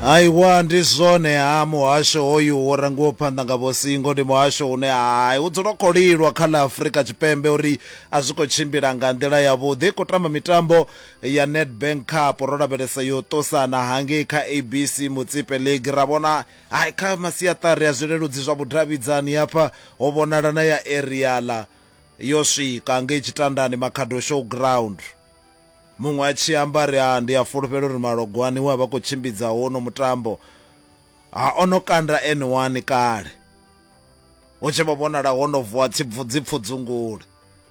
aiwa ndi zwone ha muhasho hoyu wo rangiwa phanḓa nga vhosingo ndi muhasho une hai u dzula khou lilwa kha ḽa afurika tshipembe uri a zwi khou tshimbila nga nḓila yavhuḓi khou tamba mitambo ya nedbank cup ro lavhelesa yo ṱosana hangei kha abc mutsipe league ra vhona hai kha masiaṱari a zwileludzi zwa vhudavhidzani hafha ho vhonala na ya eriala yo swika ngei tshitandani makhado show ground Muṅwe a tshi amba a ri, Ha, ndi a fulufhela uri Malogwane we a vha a khou tshimbidza hono mutambo, ha, o no kanda N one kale. Hu tshi vho vhonala ho no vuwa tshipfu, dzipfudzungule.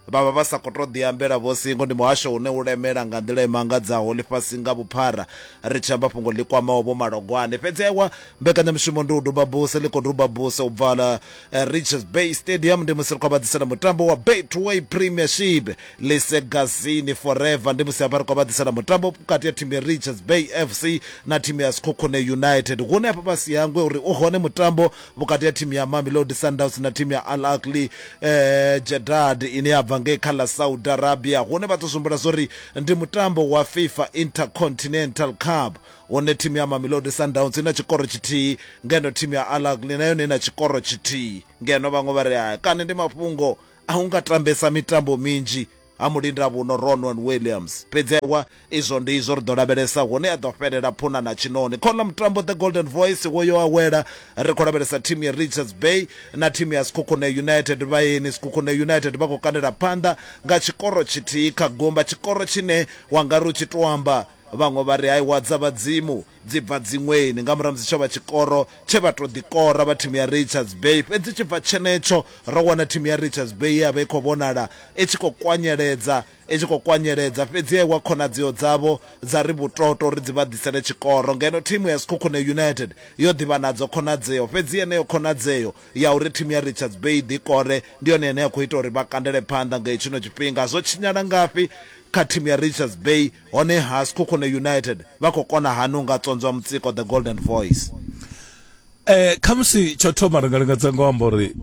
Vha vha vha sa khou tou ḓiambela vho singo. Ndi muhasho une u lemela nga nḓila i mangadzaho ḽifhasi nga vhuphara, ri tshi amba fhungo ḽi kwamaho Vho Malogwane. Fhedzi aiwa, mbekanyamushumo Ndi u duba buse ḽi khou duba buse u bva eh, richards bay stadium ndi musi ri khou vhaḓisela mutambo wa betway premiership lisegazini forever ndi musi hafha ri khou vhaḓisela mutambo vhukati ya thimu ya richards bay fc na thimu ya skhokhone united hune hafha fhasi hangwe uri u hone mutambo vhukati ya thimu ya mamelodi sundowns na thimu ya al akli eh, jedad ine ya bva ngei kha ḽa saudi arabia hune vha tou zwimbula zwo ri ndi mutambo wa fifa intercontinental cup Hone thimu ya Mamelodi Sundowns i na tshikoro tshithihi ngeno thimu ya Al Ahly na yone i na tshikoro tshithihi ngeno vhaṅwe vha ri haya kani ndi mafhungo a u nga tambesa mitambo minzhi ha mulindavhuno Ronwen Williams. Fhedzi wa izwo ndi izwo ri ḓo lavhelesa hune a ḓo fhelela phuna na tshiṋoni. Khoḽa mutambo The Golden Voice wo yo awela ri khou lavhelesa thimu ya Richards Bay na thimu ya Sekhukhune United. Vhaeni Sekhukhune United vha khou kandela phanḓa nga tshikoro tshithihi kha gumba, tshikoro tshine wa nga ri u tshi tou amba Vhaṅwe vha ri Aiwa dza Vhadzimu dzi bva dziṅweni nga murahu ha musi tsho vha tshikoro tshe vha tou ḓikora vha thimu ya Richards Bay. Fhedzi tshibva tshenetsho ro wana thimu ya Richards Bay ye ya vha i khou vhonala i tshi khou kwanyeledza i tshi khou kwanyeledza fhedzi ya iwa khonadzeo dzavho dza ri vhutoto uri dzi vha ḓisele tshikoro ngeno thimu ya Sekhukhune United yo ḓi vha nadzo khonadzeo fhedzi yeneyo khonadzeo ya uri thimu ya Richards Bay i ḓikore ndi yone ine ya khou ita uri vha kandele phanḓa nga hetshino tshifhinga. Zwo tshinyala ngafhi kha thimu ya Richards Bay? Honeha Sekhukhune United vha khou kona hani u nga tswonzwa mutsiko The Golden Voice? Khamusi tsho thoma ri nga lingedza nga u amba uri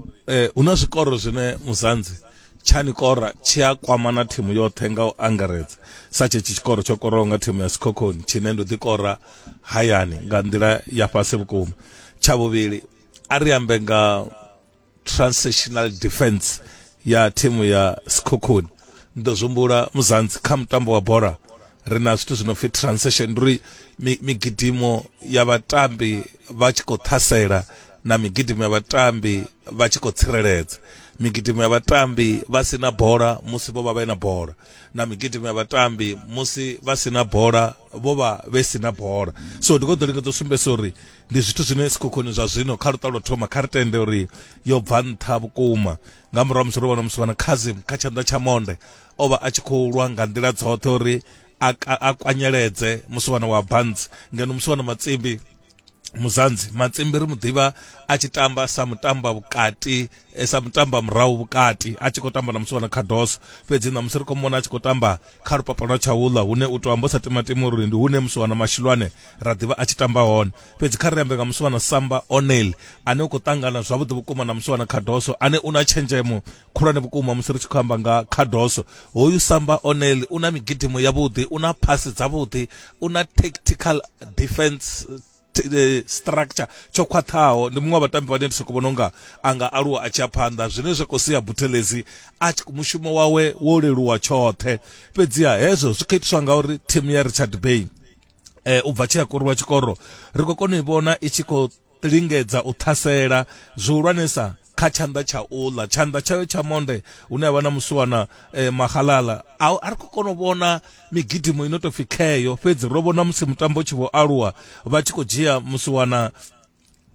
hu na zwikoro zwine Muzanzi tsha ni kora tshi a kwamana thimu yoṱhe nga u angaredza, sa tshetshi tshikoro tsho koraho nga thimu ya Sekhokhoni tshine ndo ḓi kora hayani nga nḓila ya fhasi vhukuma. Tsha vhuvhili, a ri ambe nga transactional defense ya thimu ya sikhukhuni ni ḓo zwihumbula muzanzi kha mutambo wa bola ri na zwithu zwi no pfi transaction ndi uri mi- migidimo ya vhatambi vha tshi khou ṱhasela na migidimo ya vhatambi vha tshi khou tsireledza migidimo ya vhatambi vha si na bola musi vho vha vhe na bola na migidimo ya vhatambi musi vha si na bola vho vha vhe si na bola so ndi khou ḓo lingedza u sumbedzisa uri ndi zwithu zwine sikhukhuni zwa zwino kha luṱa lwa thoma kha ri tende uri yo bva nṱha vhukuma nga murahu musi ro vhona musi vhana khazim kha tshanḓa tsha monde o vha a tshi khou lwa nga nḓila dzoṱhe uri a, a, a kwanyeledze musi vhana wa bantsi ngeno musi vhana matsimbi muzanzi matsimbi ri mu ḓivha a tshi tamba sa mutamba vhukati e sa mutamba murahu vhukati a tshi khou tamba na musi wana khadoso fhedzi na musi ri khou mona a tshi khou tamba kha lupapa lwa tshaula hune u to amba sa timatima uri ndi hune musi wana mashilwane ra ḓivha a tshi tamba hone fhedzi kha ri ambe nga musi wana samba onel ane u khou ṱangana zwavhuḓi vhukuma na musi wana khadoso ane u na tshenzhemo khulwane vhukuma musi ri tshi khou amba nga khadoso hoyu samba onel u na migidimo yavhuḓi u na phasi dzavhuḓi u na tactical defense eh, structure tsho khwaṱhaho ndi muṅwe wa vhatambi vhane ndi soko vhona unga a nga aluwa a tshi ya phanḓa zwine zwa khou sia buthelezi a mushumo wawe wo leluwa tshoṱhe fhedziha hezwo zwi khou itiswa ngauri thimu ya richard bay eh, u bva tshi a koriwa tshikoro ri khou kona u i vhona i tshi khou lingedza u ṱhasela zwihulwanesa kha tshanḓa tsha uḽa tshanḓa tshayo tsha monde hune avha na musiwana eh, mahalala a a ri khou kona u vhona migidimo ino tou pfi kheyo fhedzi ro vhona musi mutambo tshi vho aluwa vha tshi khou dzhia musiwana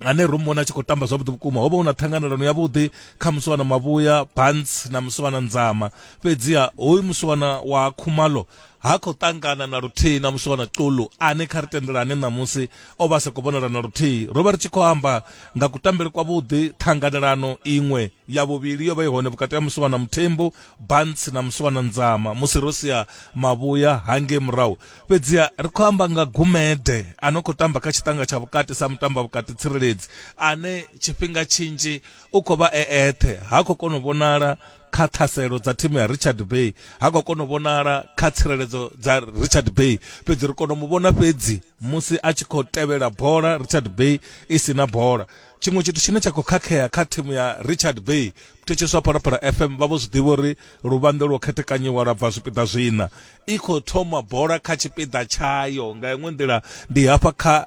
ane ro muvhona a tshi khou tamba zwavhuḓi vhukuma ho vha hu na ṱhanganelano yavhuḓi kha musiwana mavhuya bans na musiwana nzama fhedziha hoyu musiwana wa khumalo ha khou ṱangana na luthihi na muswa na xulu ane kha ri tendelane ṋamusi o vha sa khou vhonala na luthihi ro vha ri tshi khou amba nga kutambele kwavhuḓi ṱhanganelano iṅwe ya vhuvhili yo vha i hone vhukati ha muswa na muthembu bantsi na muswa na nzama musi ro sia mavhuya hangei murahu fhedziha ri khou amba nga gumede a no khou tamba kha tshiṱanga tsha vhukati sa mutamba vhukati tsireledzi ane tshifhinga tshinzhi u khou vha e eṱhe ha khou kona u vhonala kha ṱhaselo dza thimu ya richard bay ha khou kona u vhonala kha tsireledzo dza richard bay fhedzi ri kona u mu vhona fhedzi musi a tshi khou tevhela bola richard bay i si na bola tshiṅwe tshithu tshine tsha khou khakhea kha thimu ya richard bay thetshiswa phalaphala fm vha vho zwi ḓivha uri luvhanḓe lwo khethekanyiwa lwa bva zwipiḓa zwina i khou thoma bola kha tshipiḓa tshayo nga iṅwe nḓila ndi hafha kha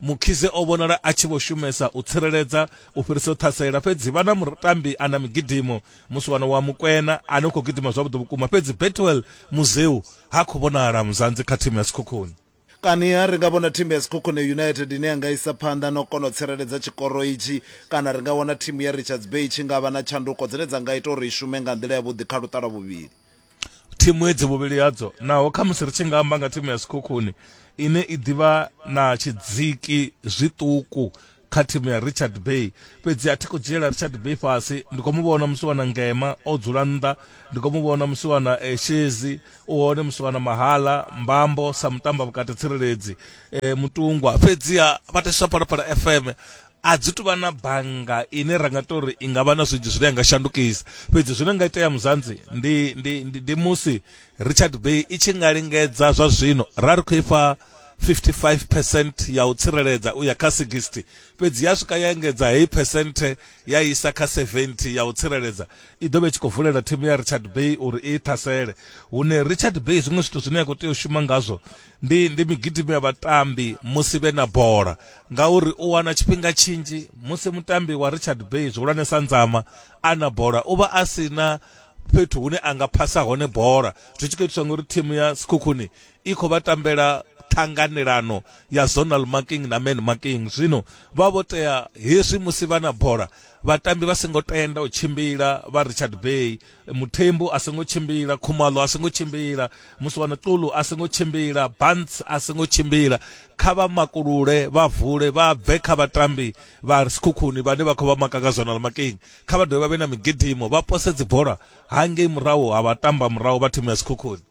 Mkhize o vhonala a tshi vho shumesa u tsireledza u fhirisa u ṱhasela, fhedzi vha na mutambi a na migidimo, musiwana wa Mokwena ane u khou gidima zwavhuḓi vhukuma, fhedzi Bethuel Muzeu ha khou vhonala muzanzi kha thimu ya Sekhukhune. Kaniha ri nga vhona thimu ya Sekhukhune United ine ya nga isa phanḓa na u kona u tsireledza tshikoro itshi, kana ri nga wana thimu ya Richards Bay i tshi nga vha na tshanduko dzine dza nga ita uri i shume nga nḓila yavhuḓi kha luṱa lwa vhuvhili. thimu hedzi vhuvhili hadzo naho khamusi ri tshi nga amba nga thimu ya sikhukhuni ine i ḓivha na tshidziki zwiṱuku kha thimu ya richard bay fhedzi a thi khou dzhiela richard bay fhasi ndi khou mu vhona musiwana ngema o dzula nnḓa ndi khou mu vhona musiwana eh, shezi u hone musiwana mahala mbambo sa mutamba vhukati tsireledzi eh, mutungwa fhedziha vhateswa phalaphala fm a dzi tuvha na bannga ine ra nga to ri i nga vha na zwinzhi zwine ya nga shandukisa fhedzi zwine nga itea muzanzi ndi, ndi, ndi, ndi musi richard bay i tshi nga lingedza zwa zwino ra ri khou ifha 55 percent ya u tsireledza u ya kha 60 fhedzi ya swika ya engedza heyi percent ya isa kha 70 ya u tsireledza i ḓo vha i tshi khou vulela thimu ya richard bay uri i ṱhasele hune richard bay zwiṅwe zwithu zwine ya khou tea u shuma ngazwo Ndi, ndi migidimo ya vhatambi musi vhe na bola, ngauri u wana tshifhinga tshinzhi musi mutambi wa Richard Bay zwihulwane sa nzama a na bola u vha a si na fhethu hune a nga phasa hone bola, zwi tshi khou itiswa ngauri thimu ya Sekhukhuni i khou vha tambela ṱhanganelano ya zonal marking na man marking. Zwino vha vho tea hezwi musi vha na bola vhatambi vha songo tenda u tshimbila vha Richard Bay muthembu a songo tshimbila khumalo a songo tshimbila muswana tulu a songo tshimbila bants a songo tshimbila kha vha makulule vha vule vha bve kha vhatambi vha sikhukhuni vhane vha khou vha maka nga zwanala makeng kha vha dovhe vha vhe na migidimo vha pose dzibola hangei murahu ha vha tamba murahu vha thimu ya sikhukhuni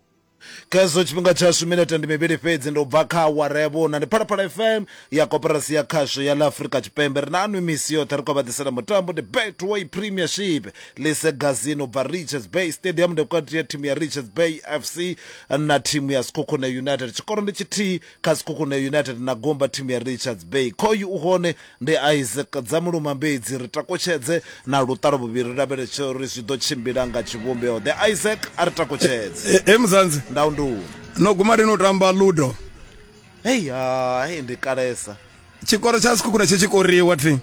Khezwo tshifhinga tshashu minete ndi mivhili fhedzi ndi u bva kha awara ya vhuna ndi Phalaphala FM ya koporasi ya khasho ya ḽa Afrika Tshipembe ri na anwi misi yoṱhe ri khou vha ḓisela mutambo ndi Betway Premiership Lise Gazini u bva Richards Bay Stadium ndi vhukati ya thimu ya Richards Bay FC na thimu ya Sekhukhune United tshikoro ndi tshithihi kha Sekhukhune United na Gomba thimu ya Richards Bay. Khoyu u hone, ndi Isaac Dzamuluma Mbedzi, ri takutshedze na luṱalo vhuvhili ri lavheletse uri zwi ḓo tshimbila nga tshivhumbeo ḓe. Isaac a ri takutshedze. He eh, eh, Muzanzi. Ndau nduni. No guma ri no tamba Ludo. Hey ha, hey ndi kalesa. Tshikoro tsha Sekhukhune tshi tshikoriwa thi.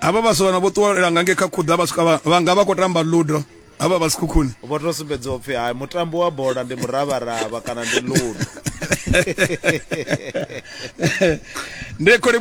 Hava vhaswa vhana vho ṱuwela nga nge kha khuḓa vha swika vha nga vha khou tamba Ludo. avha vha sikhukhuni vho to sumbedza upfi hai mutambo wa bola ndi muravharava kana ndi ludo